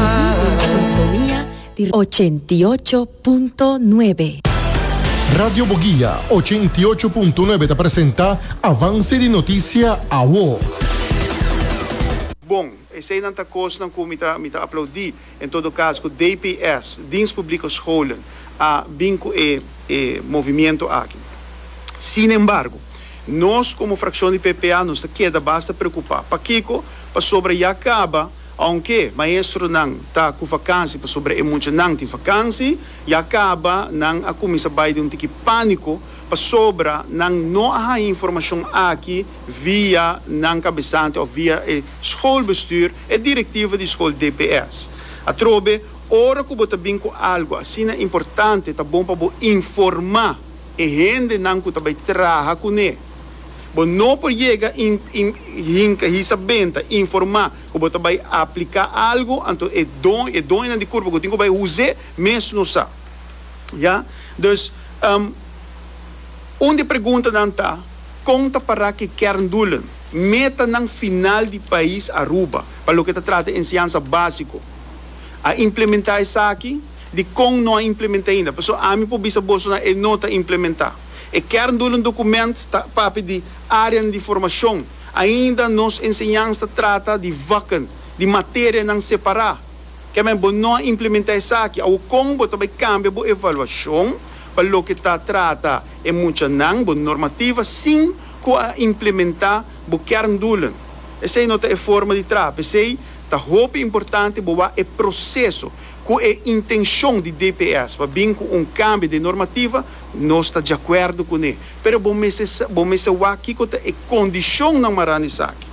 Yu na sintonia di ochenta i ocho punto nuebe. Radio Boguia ochenta i ocho punto nuebe ta presenta Avance di Noticia Awo. Bon, eseinan ta kosnan ku mi ta mi ta aplaudí. En todo kas ku DPS, Dienst Publieke Scholen, a bin ku e e movimiento aki. Sin embargo, nos komo frakshon di PPA nos ta keda basta preokupá. Pakiko? Pasobra ya kaba. Aunke maestronan ta cu vakansi pasobra e muchanan tin vakansi ya caba, nan a cuminsa bay den un tiki panico pasobra nan no a haña informacion aki via nan cabesante of via e schoolbestuur, e directiva di school dps. Atrobe, ora cu bo ta bin cu algo asina importante ta bon pa bo informa e hendenan cu ta bay traha cune. Bo no por yega i hinka hisa benta informá ku bo ta bai apliká algu, anto e don, e doño di kurpa ku tin ku bai huz'é mes no sa. Ya. Dus, un di preguntanan ta, Kon ta pará ku e kerndoelen, metanan final di pais Aruba pa loke ta trata di enseñansa básiko? A implementá esaki? Dikon no a implement'é ainda? Pasó ami por bisa boso nan e no ta implementá. E kerndoelen document ta papia di arean di formacion. Ainda nos enseñans ta trata di vakken di materianan separa. Kèmen bo no a implementa esaki, awor kon bo ta bay cambia bo evaluacion pa loke ta trata e muchanan, bo normativa, sin cu a implementa bo kerndoelen? Esey no ta e forma di traha. Pesey ta hopi importante bo wak e proceso cu e intencion di DPS pa bin cu un cambia de normativa Nos ta djakuerdo kuné. Pero bo mester sa, bo mester wak kiko ta e kondishonnan marando esaki.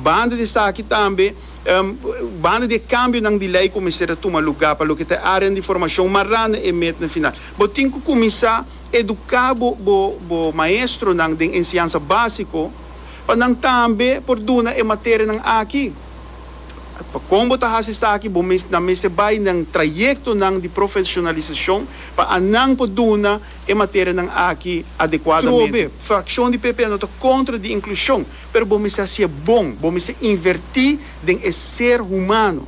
Banda di esaki tambe, em, banda di e kambionan di lei ku mester a tuma lugá pa loke ta e áreanan di formashon marando e metnan final, bo tin ku kuminsá eduká bo, bo, bo maestronan den enseñansa básiko pa nan tambe por duna e materianan aki. Kon bo ta hasi esaki? Bo ta mester bai na trayektonan di profesionalisashon pa anan por duna e materianan aki adekuadamente. Trobe frakshon di PP no ta kontra di inklushon, pero bo mester hasié bon, bo mester invertí den e ser humano.